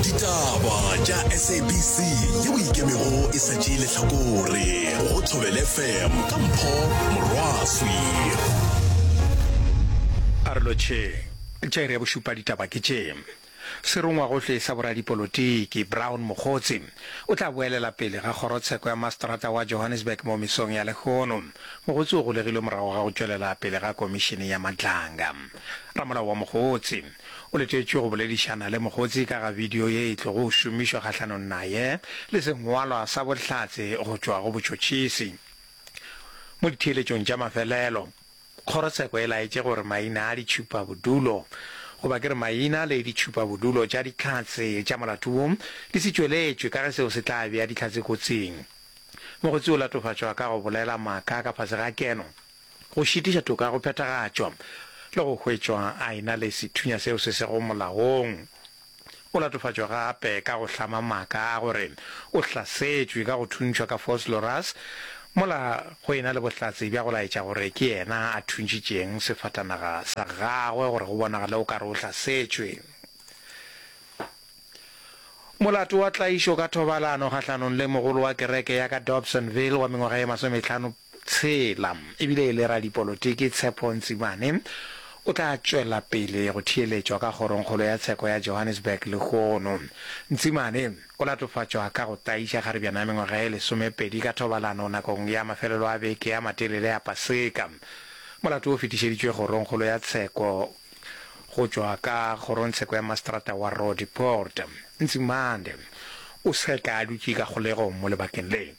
ditaba tša sabc ye o ikemego e sa tšee lehlakore go thobele fm ka mpho morwaswi a re lotšheng tša iri ya bošupa ditaba ke tše serongwagohle sa boradipolotiki brown mokgotsi o tla boelela pele ga kgorotsheko ya mastrata wa johannesburg mo mesong ya lekgono mogotsi o golegilwe morago ga go tšwelela pele ga komišene ya matlanga ramolao wa mogotsi O letetšwe go boledišana le Mokgotsi ka ga bidio ye e tlogo šomišwa kgahlanong naye le sengwalwa sa bohlatse go tšwa go botšhotšhisi. Mo ditheeletšong tša mafelelo, kgorotsheko e laetše gore maina a ditšhupabodulo, goba ke re maina le ditšhupabodulo tša dihlatse tša molato wo, di se tšweletšwe ka ge seo se tla bea dihlatse kotsing. Mokgotsi o latofatšwa ka go bolela maaka ka fase ga keno. go šitiša toka go phethagatšwa le go hwetšwa a e-na le sethunya seo se sego molaong. O latofatšwa gape ka go hlama maaka a gore o hlasetšwe ka go thuntšhwa ka Foslorus mola go e-na le bohlatse bja go laetša gore ke yena a thuntšitšeng sefatanaga sa gagwe gore go bonagale o ka re o hlasetšwe. Molato wa tlaišo ka thobalano kgahlanong le mogolo wa kereke ya ka Dobsonville wa mengwaga ye masometlhano Tshela e bile e le radipolotiki, Tshepo Ntsimane o tla tšwela pele go theeletšwa ka Kgorongkgolo ya Tsheko ya Johannesburg lehono. Ntsimane o latofatšwa ka go tlaiša kgaribjana ya mengwaga ye lesomepedi ka thobalano nakong ya mafelelo a beke a matelele a Paseka. Molato wo o fetišeditšwe Kgorongkgolo ya Tsheko go tšwa ka Kgorongtsheko ya Maseterata wa Roodepoort. Ntsimane o seka a dutše ka kgolegong mo lebakeng le.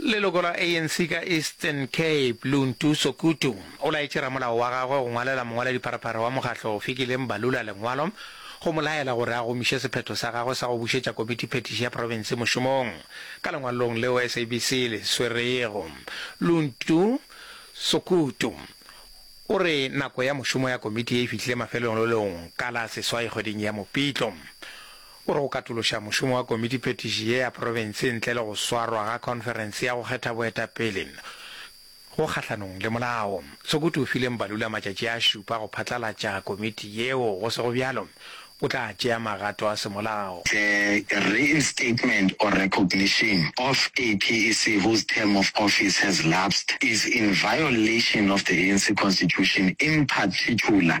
Leloko la ANC ka Eastern Cape, Luntu Sokutu, o laetše ramolao wa gagwe go ngwalela mongwaladipharapharha wa mokgatlo Fikile Mbalula lengwalo go mo laela gore a gomiše sephetho sa gagwe sa go bušetša komiti phetiši ya profense mošomong. Ka lengwalong leo SABC le swerego, Luntu Sokutu o re nako ya mošomo ya komiti ye e fihlile mafelelong ka la seswai kgweding ya Mopitlo. O re go katološa mošomo wa Komiti-petiši ye ya Profense ntle le go swarwa ga khonferense ya go kgetha boetapele go kgahlanong le molao. Sokutu o file Mbalula matšatši a šupa go phatlalatša komiti yeo, go sego bjalo o tla tšea magato a semolao. The reinstatement or recognition of a PEC whose term of office has lapsed is in violation of the ANC Constitution, in particular,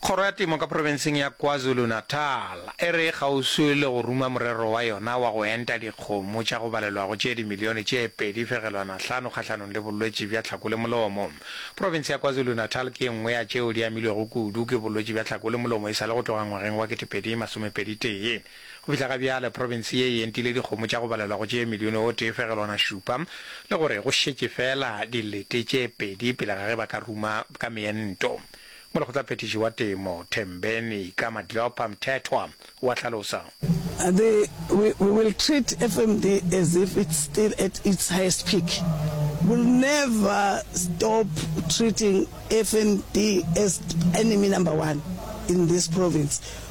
Kgoro ya Temo ka Profenseng ya KwaZulu-Natal e re e kgauswi le go ruma morero wa yona wa go enta dikgomo tša go balelwago tše dimilione tše pedi fegelwana hlano kgahlanong le bolwetši bja tlhako le molomo. Profense ya KwaZulu-Natal ke e nngwe ya tšeo di amilwego kudu ke bolwetši bja tlhako le molomo e sa le go tloga ngwageng wa ketepedi masomepedi tee. Go fihla ga bjale, profense ye e entile dikgomo tša go balelwa go tše milione o tee fegelwana šupa, le gore go šetše feela dilete tše pedi pele ga ge ba ka ruma ka meento. Molekgotlaphethiši wa Temo, Thembeni ka Madlopha Mthethwa, o a hlalosa. The, we, we will treat FMD as if it's still at its highest peak. We'll never stop treating FMD as enemy number one in this province.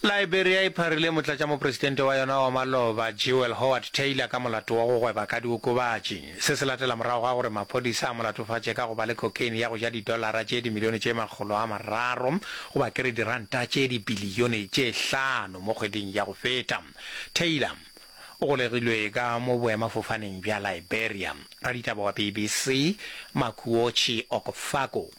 Liberia e pharile motlatšamopresidente wa yona wa maloba, Jewel Howard Taylor ka molato wa go gweba ka diokobatši. Se se latela morago ga gore maphodisa a mo latofatše ka go ba le cocaine ya go ja didolara tše dimilione tše makgolo a mararo goba ke re diranta tše dibilione tše hlano mo kgweding ya go feta. Taylor o golegilwe ka mo boemafofaneng bja Liberia. Raditaba wa BBC, Makuochi Okofako.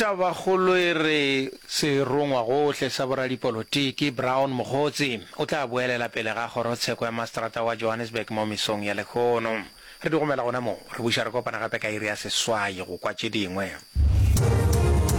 Tabakgolo e re serongwagohle sa boradipolotiki Brown Mogotsi o tla boelela pele ga kgorotsheko ya mastrata wa Johannesburg mo mesong ya lehono. Re di gomela gona moo, re buša re kopana gape ka iri ya seswai go kwa tše dingwe.